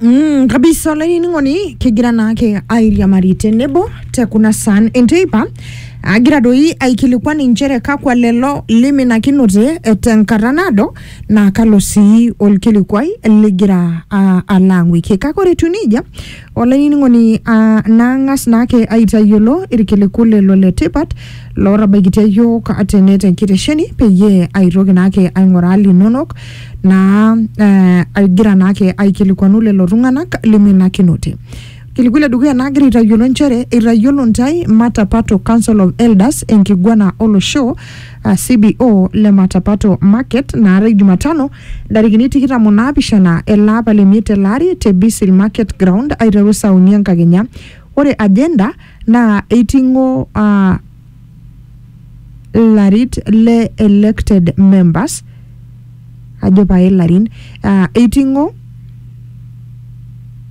Mm, kabisa olainining'oni kigira naake airiamari tenebo te kuna saan enteipa agira doi aikilikuan inchere kakwa lelo liminakinote eh, tenkata naado naa kalo sii olkilikuai ligira ah, alo ang'uiki kake ore etiu nejia Olainining'oni, aa naang'as naake aitayiolo irkiliku lelo le tipat lootabaikitia iyiook tene te nkitesheni peyie aitoki naake aing'uraa linonok naa eh, aigira naake aikilikuanu lelo tung'anak liminakinote. Kilikuai le dukuya naagira aitayiolo nchere eitayiolo ntae Matapato Council of Elders enkiguana olosho ah, CBO le Matapato Market naata Jumatano ntarikini tikitam o naapishana ele apa le miet tele ari te Bisil Market Ground aiteru saa uni enkakenya. Ore agenda naa eiting'o aa larit le elected members ajo pae larin aa eiting'o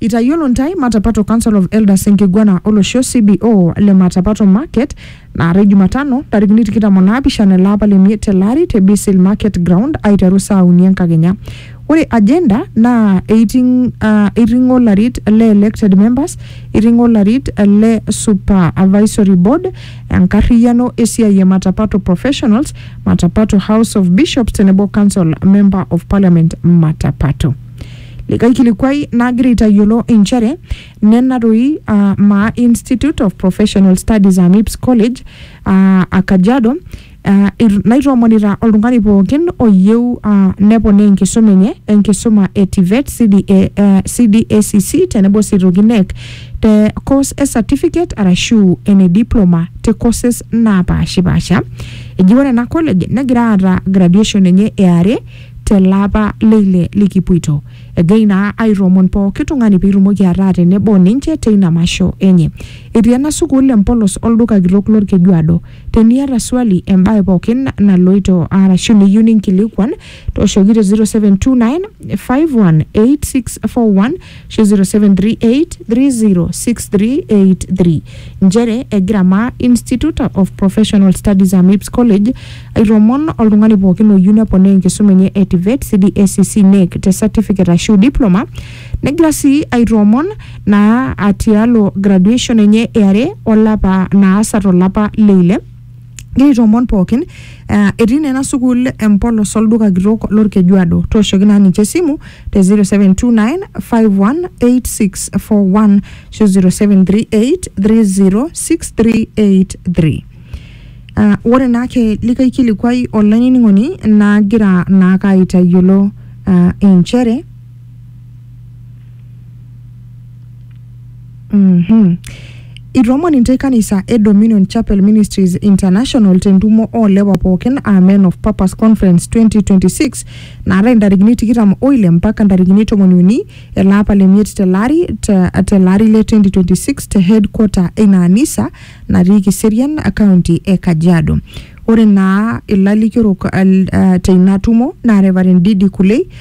Itayiolo ntae Matapato Council of Elders enkiguana olosho, CBO, le Matapato Market naatae Jumatano ntarikini tikitam o naapishana ele apa le miet tele ari te Bisil Market Ground aiteru saa uni enkakenya. Ore agenda naa eiting uh, eiting'o larit le elected members, eiting'o larit le supervisory board, enkarriyiano esiai e Matapato professionals, Matapato House of Bishops tenebo Council Member of Parliament Matapato. Likae kilikuai nagira aitayiolo inchere nena doi uh, maa Institute of Professional Studies aa MIPS College uh, a Kajiado uh, naitoomonita oltung'ani pookin oyieu uh, neponaa enkisuma enye enkisuma e TVET, CDA, uh, CDACC tenebo sii toki NEC te course e certificate arashu ene diploma te courses naapaashipaasha eji ore ena college negira aata graduation enye eare tele apa le ile likipuito. Egira ina aitoomon pooki tung'ani pee itumoki ataa tenebo o ninche teina masho enye. Etii ena sukuul empolos olduka kitok lolkejuado. Teniata swali, embae pookin naloito arashu niyieu ninkilikuan, tooshoki te 0729 518641 ashu 0738306383 nchere egira maa Institute of Professional Studies Amips College aitoomoon oltung'ani pookin oyieu neponaa enkisuma enye e TVET, CDSCC, NEC te certificate ashu diploma negira sii aitoomoon naa atialo graduation enye eare olapa naasa tolapa leile Egira aitoomon pookin uh, etii naa ena sukuul empolos olduka kitok lorkejuado tooshoki naa ninche esimu te 0729518641 ashu 0738306383 Uh, ore naa ke likae kilikuai olainining'oni nagira naake aitayiolo uh, inchere Mhm. Itoomon intae kanisa e Dominion Chapel Ministries International tentumo oolewa pookin aa Men of Purpose Conference 2026 naatae intarikini tikitam oile mpaka intarikini tomoni uni ele apa le miet tele ari te- tele ari le 2026 te headquarter eina anisa natii Kiserian county e Kajiado. Ore naa ilalikiorok al- ah, teina tumo naa Reverend Didi Kulei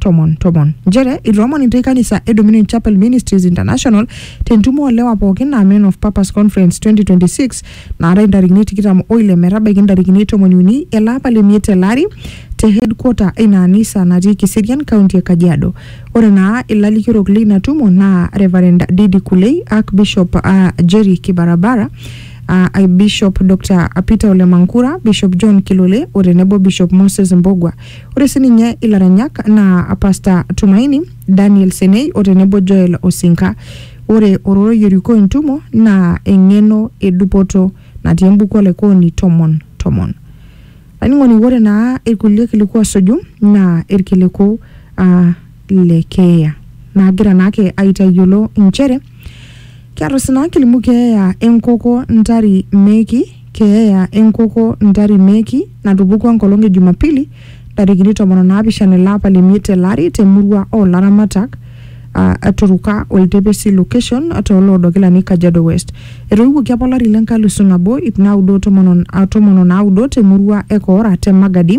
tomon tomon nchere itoomon intae kanisa e Dominion Chapel Ministries International tentumo oolewa pookin naa Men of Purpose Conference 2026 naatai intarikini tikitam oile metabaiki intarikini tomoni uni ele apa le miet tele ari te headquarter eina anisa natii Kiserian, kaunti e Kajiado. Ore naa ilalikiorok leina tumo naa Reverend Didi Kulei, Archbishop uh, Jerry Kibarabara uh, Bishop Dr. Peter Ole Mankura, Bishop John Kilole o tenebo Bishop Moses Mbogwa. Ore sininye ilaranyak naa Pastor Tumaini, Daniel Senei o tenebo Joel Osinka. Ore ororei orikoo entumo naa eng'eno e dupoto natii embuku Olaikooni tomon tomon. Laining'oni ore naa irkulie kiliku osuju naa irkiliku aa le keeya naagira naake aitayiolo inchere kiata oshi naa kilimu keeya enkoko ntari meeki keeya enkoko ntari meeki natupukua enkolong e Jumapili ntarikini tomon o naapishana ele apa le miet ele ari temurua oo laramatak aa aturuka oltepesi location tooloodo kilani Kajiado West. Etoiwuoki apa olari le nkalisu nabo ip naudo o tomon o- a- tomon o naudo temurua e Koora te Magadi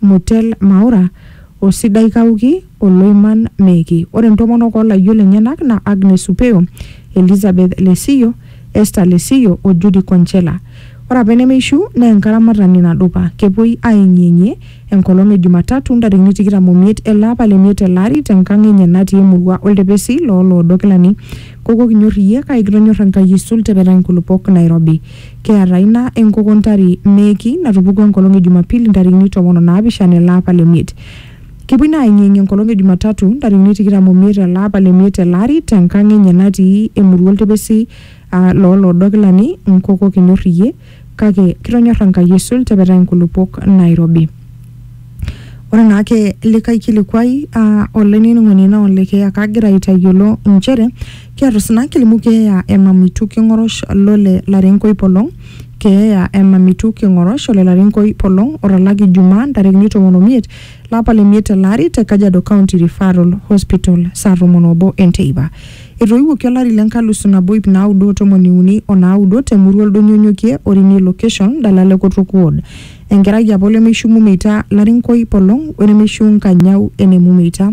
Mutel Maura, o Sidai Kauki o Loiman Meeki. Ore ntomonok o layiok lenyenak naa Agnes Upeo, Elizabeth Lesiyo, Esther Lesiyo o Judy Konchela. Ore apa enemeishu naa enkaramatani nadupa. Kepuoi aayeng'iyeng'ie enkolong e Jumatatu ntarikini tikitam o miet ele apa le miet tele ari te nkang enye natii emurua oltepesi loo loodo kilani. Koko kinyor iyie kake kitonyor Enkai aisul, tepetai nkulupuok nairobi. Keeta ina enkoko ntari meeki natupukuo enkolong e Jumapili ntarikini tomon o naapishana ele apa le miet. Kepuoi naa aeng'ieng'ie enkolong e Jumatatu ntarikini tikitam o miet ele apa le miet tele ari te nkang enye natii emurua oltepesi aa loo loodo kilani nkoko kinyor iyie kake kitonyorra Enkai aisul tepetai inkulupuok naairobi. Ore naa ake likae kilikuai aa olainining'oni naa ole keeya kagira aitayiolo inchere Keatusna kilimu keeya e mamitu king'orosh lo le Larenkoi Polong, keeya e mamitu king'orosh o le Larenkoi Polong otalaki Ijumaa ntarikini tomon o miet lapa le miet tele ari te Kajiado County Referral Hospital saa tomon o obo e nteipa. Etoiwuoki olari le nkalusu nabo iip naudo o tomoni uni o naudo te murua Oldonyo Onyokie, Orini Location, Dalala e Kotok Ward. Enkerai apa olemeishiu Mumeita, Larenkoi Polong, wenemeishiu Nkanyau ene Mumeita.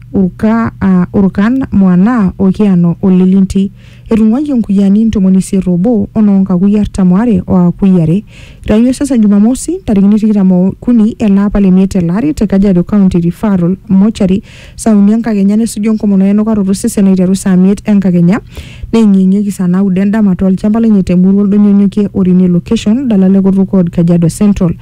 Uka aa Urkan, Muana, o Kiano o Lelinti. Etung'uayie nkuyiani ntomoni isiet oobo o noo nkakui artam oare o akui are. Eitaini osesen Jumamosi, ntarikini tikitam o kuni ele apa le miet tele ari te Kajiado County Referral Mortuary saa uni enkakenya nesuju enkomono e nukaroto osesen aiteru saa miet enkakenya neeng'ieng'ieki saa naudo endama to lchamba lenye te murua Oldonyonyokie o Rinie Location, Dalala e Kotukod, Kajiado Central.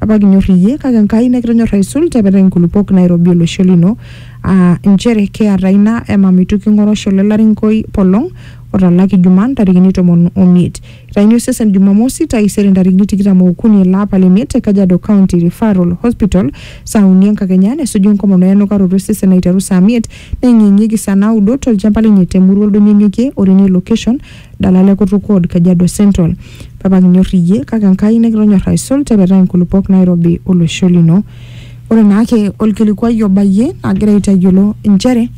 Apa kinyor iyie kake Enkai nikitonyor aisul tepetai nkulupuok nairobi olosho lino aa nchere kiata ina emam itu king'oru osho le Larinkoi Polong otalaki Juma ntarikini tomon omiet. Itaini osesen Jumamosi taisere ntarikini tikitam ookuni ele apa le miet te Kajiado County Referral Hospital saa uni enkakenya nesuju enkomono e enukaroto e sesen aiteru saa miet neyeng'iyeng'ieki saa naudo tolchamba lenye te murua Oldonyonyokie o Rene Location Dalal e kutuk ward Kajiado Central. Papa kinyor iyie kake Enkai nikitonyor aisul tepetaa inkulupuok nairobi olosho lino. Ore naake olkilikuai obayie agira aitayiolo inchere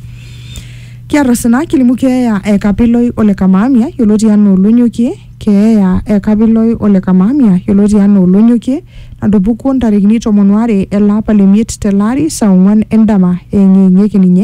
kiata osina kilimu keeya e Kapiloi ole Kamaamia yioloti anaa Olonyokie, keeya e Kapiloi ole Kamaamia yioloti anaa Olonyokie natupukuo ntarikini tomon oare ele apa le miet tele ari saa ong'wan endama eeng'ieng'ieki ninye